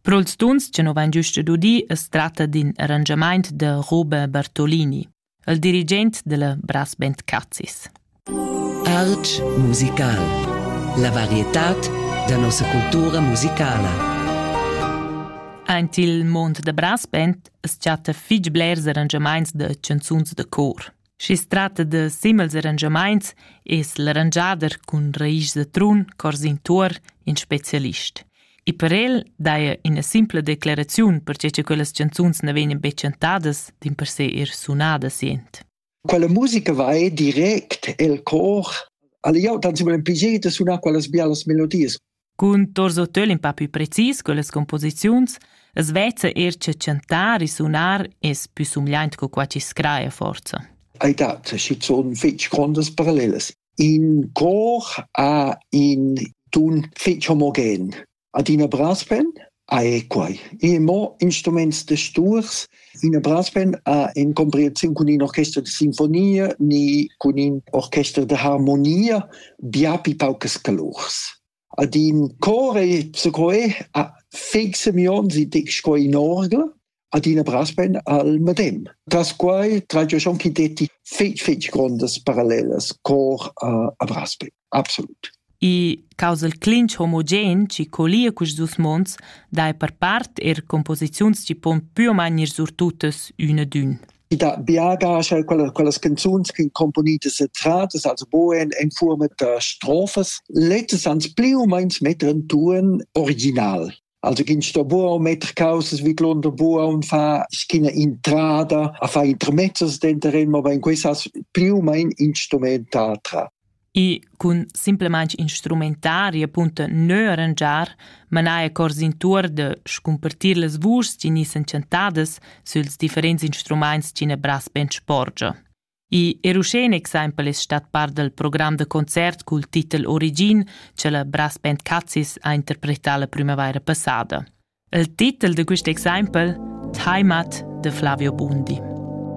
Per ils tuns che nu vain giüst udì as tratta d'ün arrangiamaint da Roba Bartolini, il dirigent da la Brassband Cazis. Arch musical. La varietad da nossa cultura musicala. Aint il mond da brass band as chatta fich blers arrangiamaints da chanzuns da cor. Schi's tratta da simels arrangiamaints es l'arrangiader cun raisch da trun corsin tuor in specialist. E per el daja üna simpla declaraziun perche cha quellas chanzuns na vegnan be chantadas, dimpersè eir sunadas jent. Quella musica va direct el cor. Alla jau tan simil pigier da sunar quellas bialas melodias. Cun Torso Töl in pa pü precis quellas composiziuns as vezza eir cha chantar e sunar es pü sumgliaint co qua chi scraja forza. Hai dat schizuon fich grondas parallelas. In cor ha in tun fich homogen. Adina brass pen, Ei quai. E mo instruments da sturs. Ina brassband ha in comprehensiun cun in orchester da sinfonia ni cun in orchester da harmonia biapi paucas calurs. Ad in cor ei secoe ha feg semions e dic sco in orgel. adina brasben al medem. Tras quai tragia schon chi detti fetg fetg grondas parallelas cor a, a Brasben, absolut. I causal clinch homogen chi colia cus dus mons dai per part er composiziuns chi pon pü o main ir surtutas üna d'ün. I da biagas, quella, quellas canzuns che componitas e tratas, also boen in forma da strofas, lettes ans pli o meins metter in tuon original. Also ginn sto buo metter causes wie Glunder buo und fa schina intrada a fa intermezzos denterem, aber in quesas più mein instrumentatra. E cun simplemaing instrumentari appunto neu arrangiar, manai accords in tour de scumpartir las vuschs chi ni s'enchantadas süls differents instrumaints chi ne bras ben sporgia. I er uschè in exempel es stat part dal program da concert cul titel Origin che la Brass Band Cazis ha interpretà la primavaira passada. Il titel da quist exempel Heimat de Flavio Bundi.